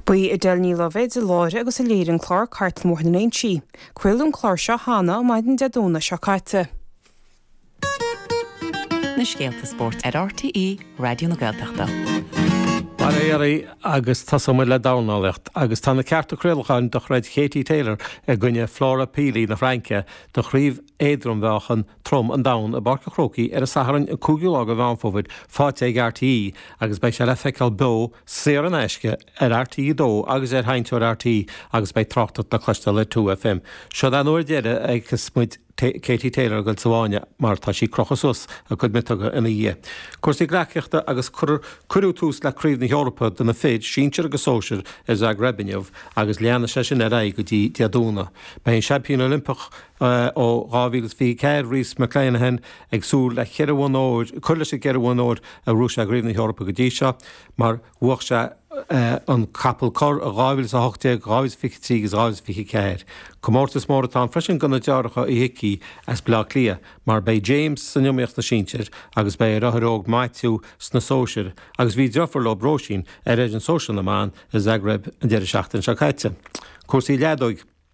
Ba í Edel Ní Loibhéid a láithrigh agus a léirigh an clár Cartlann Bhóthar na Léinsí. Craoladh an clár seo cheana maidin Dé Domhnaigh seo caite. na scéalta spóirt ar RTÉ Raidió na Gaeltachta. Bail ó Dhia oraibh agus tosóidh muid le dornálaíocht agus tá na cearta craolacháin do throid Katie Taylor i gcoinne Flora Pili na Fraince do chraobh éadrom-mheáchan Trom an Domhain i bPáirc an Chrócaigh ar an Satharn an 5ú lá de Mheán Fómhair faighte ag RTÉ agus beidh sé le feiceáil beo, saor in aisce ar RTÉ 2 agus ar Sheinnteoir RTÉ agus beidh tráchtaireacht le cloisteáil ar 2FM. Seo'd an uair deireadh a fheicfeas muid Katie Taylor ag goil sa bhfáinne mar tá sí ag crochadh suas a cuid miotóga ina dhiaidh. Cúrsaí gleacaíochta agus cuireadh tús le Craobh na hEorpa do na fir, sinsir agus sóisir, i Zagreb inniu agus leanfaidh sé sin ar aghaidh go dtí Dé Domhnaigh. Beidh an Seaimpín Oilimpeach, Ó 2024, Rhys McClenaghan ag súil le cur leis na ceithre bhonn óir a ghnóthaigh sé i gCraobh na hEorpa go dtí seo, mar bhuach sé an Capall Corr in 2018, 2023 agus 2024. Comórtas mór atá ann freisin do na deartháireacha Uí hIcí as Baile Átha Cliath, mar beidh James san iomaíocht sna sinsir agus beidh a dheartháir óg Maitiú sna sóisir agus bhí deirfiúr leo, Róisín, ar fhoireann sóisear na mban i Zagreb an deireadh seachtaine seo caite. Cúrsaí Leadóige.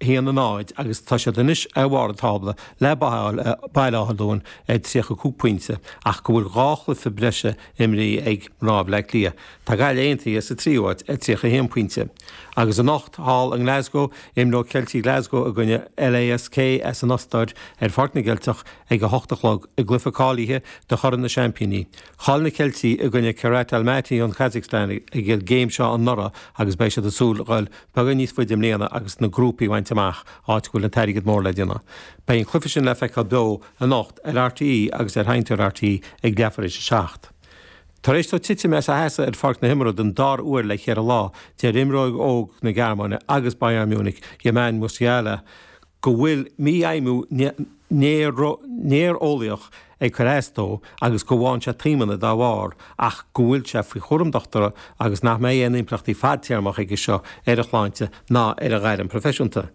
1 in áit agus tá siad anois ar bharr an tábla le Baile Baile Átha Luain ar 35 pointe ach go bhfuil dhá chluiche breise imrithe ag mná Bhleá Cliath. Tá Gaillimh Aontaithe sa tríú háit ar 31 pointe. Agus anocht thall i nGlasgow, imreoidh Ceiltigh Glasgow i gcoinne LASK as an Ostair ar Pháirc na gCeilteach ag 8 a chlog i gcluiche cáilithe do Chorn na Seaimpíní. Chaill na Ceiltigh i gcoinne Kairat Almaty ón Kazakhstan ag an gcéim seo anuraidh agus beidh siad ag súil beagán níos faide i mbliana agus na grúpaí a bhaint amach áit a bhfuil an t-airgead mór le déanamh. Beidh an cluiche sin le feiceáil beo anocht ar RTÉ agus ar sheinnteoir RTÉ ag leath tar éis a seacht. Tar éis dó titim as a sheasamh ar pháirc na himeartha don dara uair le ceithre lá, deir imreoir óg na Gearmáine agus Bayern Munich, Jamal Musiala, go bhfuil mífheidhmiú néareolaíoch ag cur as dó agus go bhfaigheann sé taomanna dá bharr ach go bhfuil sé faoi chúram dochtúra agus nach mbeidh aon impleachtaí fadtéarmach aige seo ar a shláinte ná ar a ghairm proifisiúnta.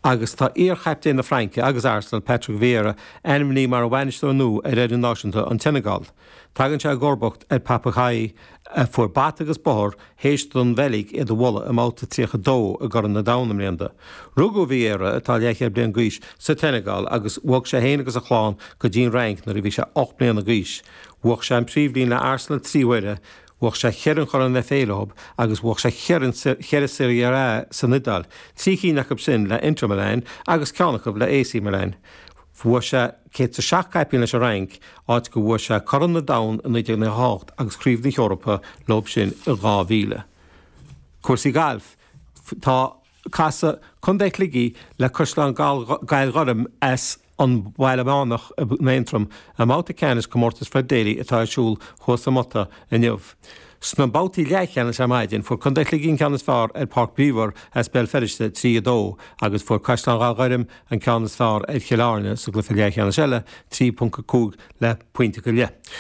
Agus tá iar-chaptaen na Fraince agus Arsenal, Patrick Vieira, ainmnithe mar bhainisteoir nua ar fhoireann náisiúnta an tSeineagáil. Tagann sé i gcomharbacht ar Pape Thiaw, a fuair bata agus bóthar théis don Bheilg iad a bhualadh i mBabhta 32 i gCorn an Domhain i mbliana. Rugadh Vieira, atá leathchéad bliain d'aois, sa tSeineagáil agus bhog sé féin agus a chlann go dtí'n Fhrainc nuair a bhí sé ocht mbliana d'aois. Bhuaigh sé an Phríomhroinn le Arsenal trí huaire, bhuaigh sé ceithre an Chorn FA leo agus bhuaigh sé ceithre Serie A san Iodáil, trí cinn acu sin le Inter Milan agus ceann acu le AC Milan. Bhuaigh sé 107 caipín leis an Fhrainc, áit go bhuaigh sé Corn an Domhain i 1998 agus Craobh na hEorpa leo sin i 2000. Cúrsaí Gailf Tá ag casadh Contae Shligigh le Caisleán Ghallghorm as an Bhaile Meánach in Aontroim i mbabhta ceannais Comórtas Fred Daly atá ar siúl thuas sa Mhóta inniu. Sna babhtaí leathcheannais ar maidin, fuair Contae Shligigh an ceann is fearr ar Pháirc Belvoir as Béal Feirste, 3 2, agus fuair Caisleán Ghallghorm an ceann is fearr ar Chill Airne sa gcluiche leathcheannais eile, 3.5 le pointe go leith.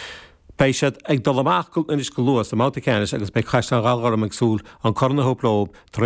Beidh siad ag dul amach anois go luath sa mbabhta ceannais agus beidh Caisleán Ghallghorm ag súil an corn a thabhairt leo tar